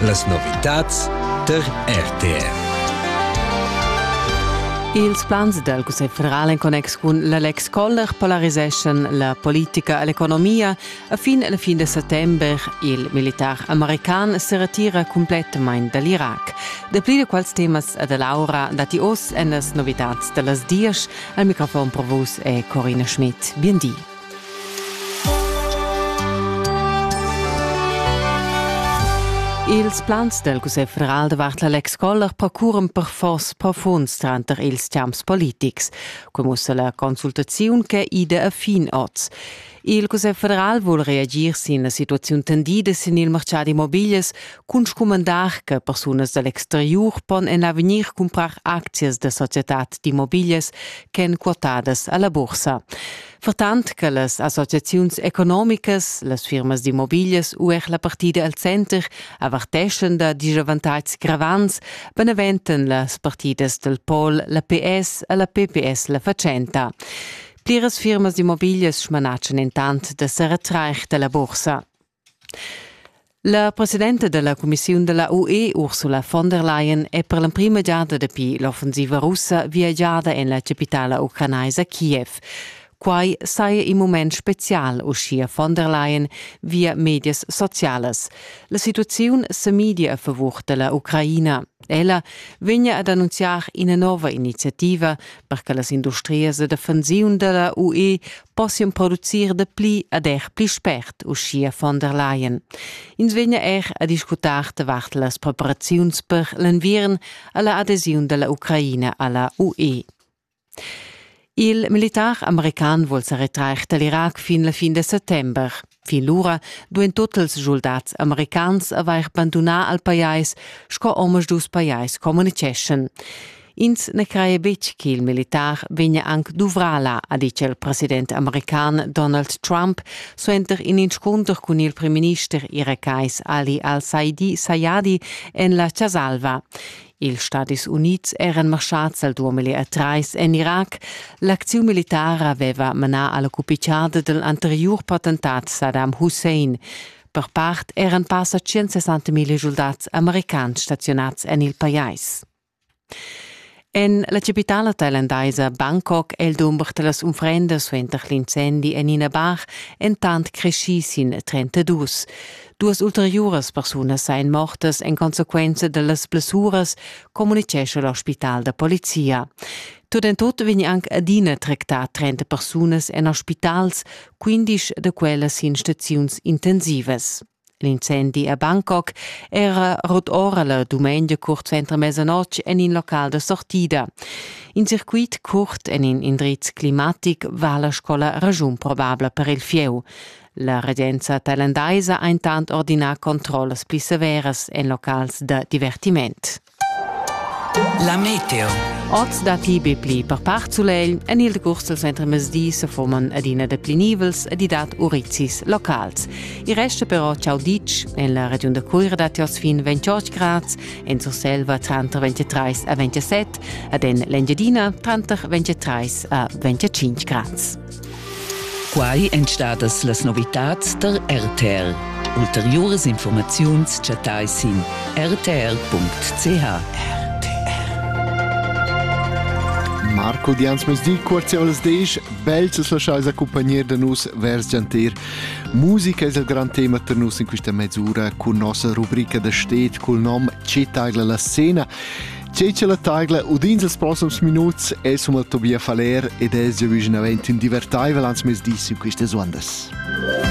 Las novitads tar RTR. Ils plans dal Cussegl federal en connex cun l'Alex Koller polariseschan la politica e l'economia. A fin la fin de settembre il militar american se retira completamain dall'Irac. Dapli de quals temas e dell'aura dati oz en las novitats dellas dies. Al microfon provus è Corina Schmidt. Bien di. Ils plans del Cussegl federal davart l'Alex Koller procuran per fors profunds tranter ils champs politics, com ussa la consultaziun che ida a fin oz. Il Cussegl federal vuol reagir sin la situaziun tendida sin il mercad immobilias cun scumandar che persunas dall'exteriur pon en avegnir comprar aczias da societad d'immobilias ch'en quotadas alla bursa. Fertant che las associaziuns economicas, las firmas d'immobiglias u er la partida al center averteschan da disavantatgs gravants, beneventan las partidas dal pol la PS e la PPS la fatschenta. Pliras firmas d'immobiglias smanatschan entant da sa retrair da la bursa. La presidenta dalla cumissiun dalla UE Ursula von der Leyen è per l'emprima giada dapi l'offensiva russa viagiada en la capitala ucranaisa Kiev. Quai saja in mument spezial, uschia von der Leyen via medias socialas. La situaziun sa midia a favur dalla Ucraina. Ella vegna ad annunziar ina nova iniziativa per che las industrias da defensiun da la UE possian producir da pli ad er pli spert, uschia von der Leyen. Ins vegna er a discutar davart las preparaziuns per l'enviern a la adesiun da la Ucraina a la UE. Il militar american vul sa retrair dal Irac fin la fin da settember. Fin lura duain totals schuldats americans avair bandunà al pajais sco omaduus pajais communiceschan. Ins na craia betg ch'il militar vegnia anc duvrà là, ha ditg il president american Donald Trump suenter in inscunter cun il primminister irakais Ali al-Saidi Sayadi en la Chas Alva. Ils Stadis Unids eran marschads al 2003 en Irac. L'acziun militara aveva manà a la cupitgada dal anteriur potentat Saddam Hussein. Per part eran passa 160 000 schuldats americans staziunads en il pajais. En la chapitala tailandaisa Bangkok è il dumber da las unfrendas suenter l'incendi en ina bar entant creschì sin 32. Duas ulteriuras persunas ein mortas en consequenza dallas blessuras, communicescha l'ospital da polizia. Tut en tut vegn anc adina tractà 30 persunas en ospitals, 15 da quellas in staziuns intensivas. L'incendi a Bangkok era rut ora la dumengia curt suenter mesanotg en in local da sortida. In circuit curt en in indriz climatic va la scola ragiun probabla per il fieu. La regenza talandaisa ha intant ordinà controllas pli severas en locals da divertiment. La meteo. Oz dapi be pli per part sulegl, en il decurs dals entremezdi se fuman adina deplinivels ed i dat urizis locals. I resta però ciao ditg, en la regiun da Cuira dat oz fin 28 grads, en Surselva tranter 23 a 27 ed en l'Engiadina tranter 23 a 25 grads. Quai èn stadas las novitads tar RTR. Ulteriuras informaziuns chattai sin rtr.ch. Marco Diansmesdi, cuorzi olas desch, bels es laschais accompagner da nus vers gianter. Musica es il gran tema per nus in questa mezz'ura cun nossa rubrica da stet cul nom Cetaila la scena. Tgei che la taigla udins els proxims minuts es um el Tobias Faller ed es già vicinavent in divertaivel ans mes dis in quistas uondas.